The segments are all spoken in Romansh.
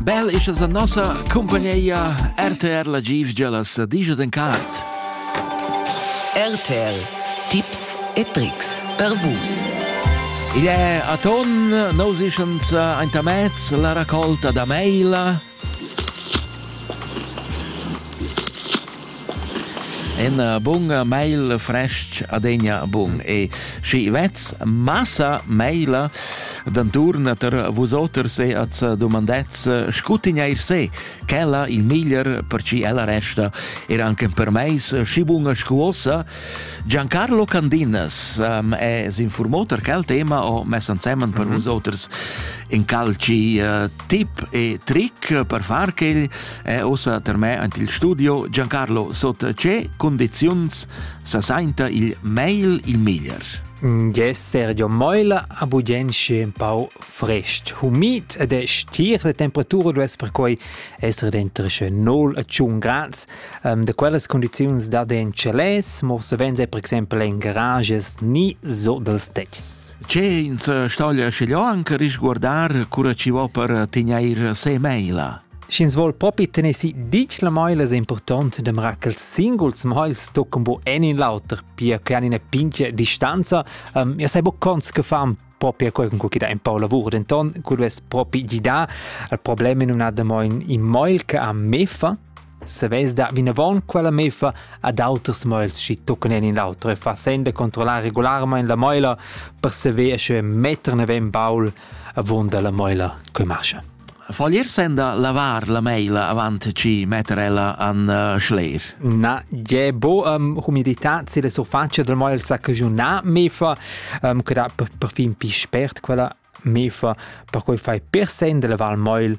Bel isha za nossa cumpagneia RTR la Givgia las digia den cart. RTL Tipps e Tricks per vus. Il è a ton nos ischans aintamez la raccolta da maila Ena bunga meila frestg adegna bun e schi vez massa meila d'anturna tar vusoters e az dumandez scutigneir se, ch'ella il miglier per ci ella resta er anche per meis schi bunga scuossa Giancarlo Candinas um, è s'informò tar quel tema o mes ansemen per mhm. vusoters in calci uh, tip e trick per far che È ossa termè ant il studio Giancarlo sot ce condiziuns sa sainta il mail il meglier. Ges Sergio Meul a bugenche un pau frest, humid ed è stir la temperatura duess perquai essere dentro che 0 a 1 grads. Um, de quellas condiziuns da den celes, mo savens è per exempel in garages ni so dels techs. Che ins stoglia schiglio anche risguardar cura ci vo per tegneir se maila. Sch'ins vuol propi tener si dic la moila es important dem racels singuls moils toccam bo en in l'auter, pia che han ina pincia distanza. Um, ja sei bo cons che fan proprio quel con cui da un po' lavoro denton quello es propi gida il problema non ha da mo in moil che ha mefa Savess dar vinavon quella meffa ad auters moels schi tuccan en in auter e fassend da controllar regolarmein la moela per saver sche metter naven baul avunda la moela che mascha. Voglier senda lavar la meila avant ci metter ella an uh, schler? Na, je bo um, humidità se la surfacia del moel sa cagiuna mefa, um, che da perfin pi spert quella mefa, per cui fai per sen de lavar il moel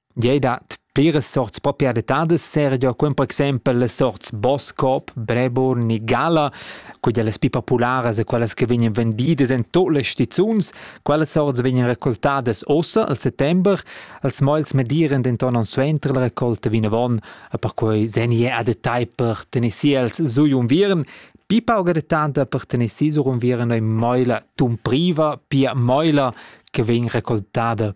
Gliei dat pliras sorts proprietadas seregia quem per exempel las sorts Boscop, Brebour ni Gala, quella las pli popularas e quellas che vegnan vendidas en tot las stizuns. Quellas sorts vegnan recoltadas ussa al settember, els moels madiran denton aunc suenter la raccolta vinavon e perquei segni a detagl per tener si els su unviern. Pi pauga detanta per tener si sur unviern ei moela tumpriva, pia moela che vegn recoltada